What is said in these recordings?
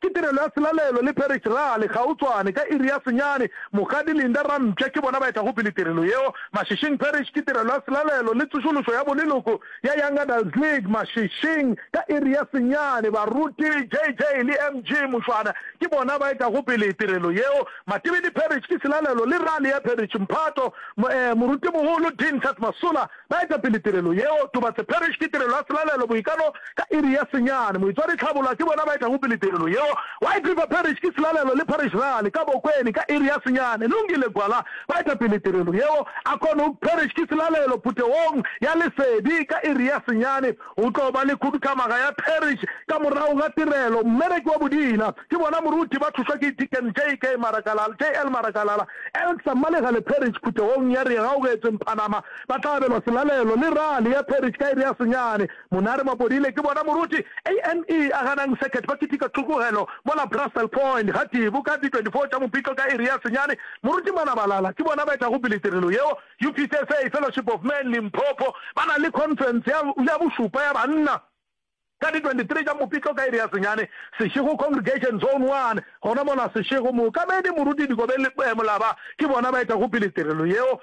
Ke tirelo ya selalelo le Parish Rally gautshwane ka iri ya senyane. Mokgadi Linda Rampša ke bona ba etago pele tirelo yeo. Mashishing Parish ke tirelo ya selalelo le tsošološo ya boleloko ya Young Adults League Mashishing ka iri ya senyane. Baruti JJ le MG Mušwana ke bona ba etago pele tirelo yeo. Matibidi Parish ke selalelo le rally ya Parish Mphato Morutimogolo Dean Tat Masola Ba eta pele tirelo yeo. Tobatse Parish ke tirelo ya selalelo boikano ka iri ya senyane. Moitswadi Tlhaboloa ke bona ba etago pele tirelo yeo. White River Parish ke selalelo le Parish Rally ka Bokweni ka iri ya senyane. Lungile Gwala ba eta pele tirelo yeo. Akonhoek Parish ke selalelo putegong ya lesedi ka iri ya senyane. Go tlo ba le khuduthamaga ya Parish ka morago ga tirelo mmereki wa bodila. Ke bona moruti ba thušwa ke Deacon JK Marakalala, JL Marakalala, Elcsa Mmalega le Parish phuthegong ya Re Gaugetsweng Phanama ba tla abelwa selalelo le rally ya Parish ka iri ya senyane. Monare Mapodile ke bona moruti Ame a ganang circuit ba kitika tlhokogelo mola Brussel Point ga Tibu ka di 24 tša Mopitlo ka iri ya senyane. Moruti Manabalala ke bona ba etago pele tirelo yeo. UPCSA Fellowship of Men Limpopo ba na le conference ya ya bošupa ya banna. ka di 23 tša Mopitlo ka iri ya senyane, Seshego Congregation, Zone One, gona mola Seshego. Mookamedi Moruti Dikobe le Molaba ke bona ba etago pele tirelo yeo.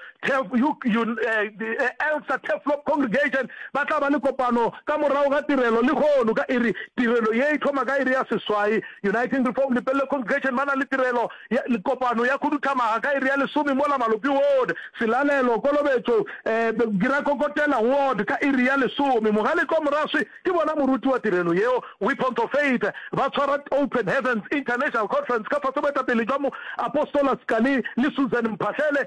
Elksa Turfloop Congregation ba tla ba le kopano ka morago ga tirelo lehono ka iri. Tirelo ye e thoma ka iri ya seswai. Uniting Reformed Lepelle Congregation ba na le tirelo ya, kopano ya khuduthamaga ka iri ya lesome mola Malopi Ward, Selalelo, Kolobetšo, eh, Girakokotela Ward ka iri ya lesome. Mogalekwa Moraswi ke bona moruti wa tirelo yeo, Weapons of Faith, ba tshwara Open Heavens International Conference ka fase boetapele jwa Mo, Apostola Scalie le Susan Mphahlele.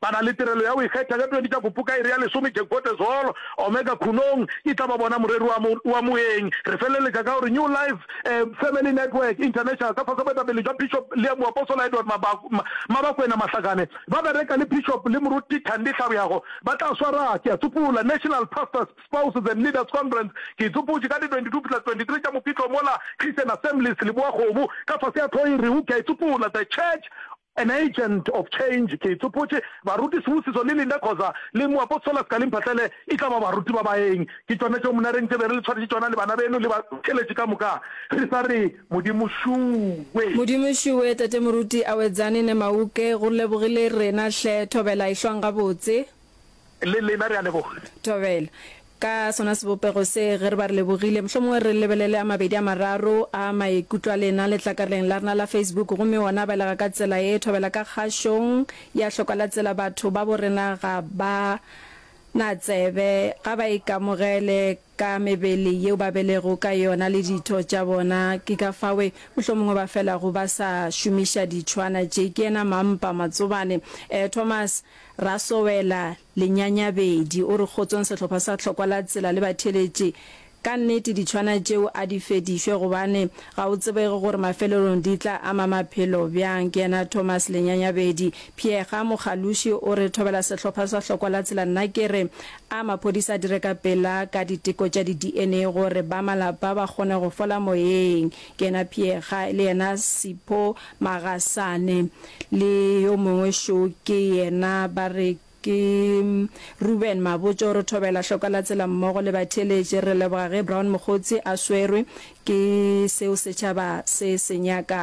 Ba na le tirelo ya go ikgetha ka 20 tša Kupu ka iri ya lesome Jekgotezolo, Omega Khunong e tla ba bona moreri wa mo, wa moeng. Re feleletša ka gore New Life eh, Family Network International ka fase boetapele jwa Bishop le Moapostola Edward Maba, Ma, Mabakwena Mahlakane ba bereka le Bishop le Moruti Thandi Hlabjago ba tla swara, ke a tsopola, National Pastors, Spouses and Leaders Conference. Ke e tsopotše ka di 22 fihla 23 tša Mopitlo mola Christian Assemblies Leboa-Kgomo ka fase ya tlhoiri u, ke a e tsopola, The Church An Agent of Change, Ke tsopotše Baruti Sibusiso le Linda Khoza le Moapostola Scalie Mphahlele e tla ba baruti ba baeng. Ke tšona tšeo monareng tše be re le tshwaretše tšona le bana beno le bakheletše ka moka, re sa re, Modimo šuwe. Modimo šuwe, Tate Moruti Awedzani Nemauke, go lebogile rena hle, thobela e hlwang gabotse. Le lena re a leboga. Thobela. Ka sona sebopego se, ge re ba re lebogile, mohlomongwe re lebelele a mabedi a mararo a maikutlo a lena letlakarleng la rena la Facebook, gomme wona a belega ka tsela ye, Thobela ka kgašong ya hlokwa la tsela batho babo rena ga ba na tsebe, ga ba ikamogele, ka mebele yeo ba belego ka yona le ditho tša bona, ke ka fawe mohlomongwe ba felago ba sa šomiša ditšhwana tše, ke yena Mampa Matsobane. Eh, Thomas Rasowela Lenyanyabedi o re kgotsong sehlopha sa Tlhokwa la Tsela le batheeletše ka nnete ditšhwana tšeo a di fedišwe gobane ga o tsebege gore mafelelong di tla ama maphelo bjang, ke yena Thomas Lenyanyabedi. Pheega Mogaluši o re thobela sehlopha sa Tlhokwa la Tsela, nna ke re A maphodisa a dire ka pela ka diteko tša di-DNA gore ba malapa ba kgone go fola moyeng, ke yena Pheega, le yena Sipho Magasane le yo mongwe šo ke yena ba re ke Reuben Mabotjo. Re thobela hlokwa la tsela mmogo le batheeletši. Re leboga ge Brown Mokgotsi a swerwe ke seo setšhaba se se nyakago.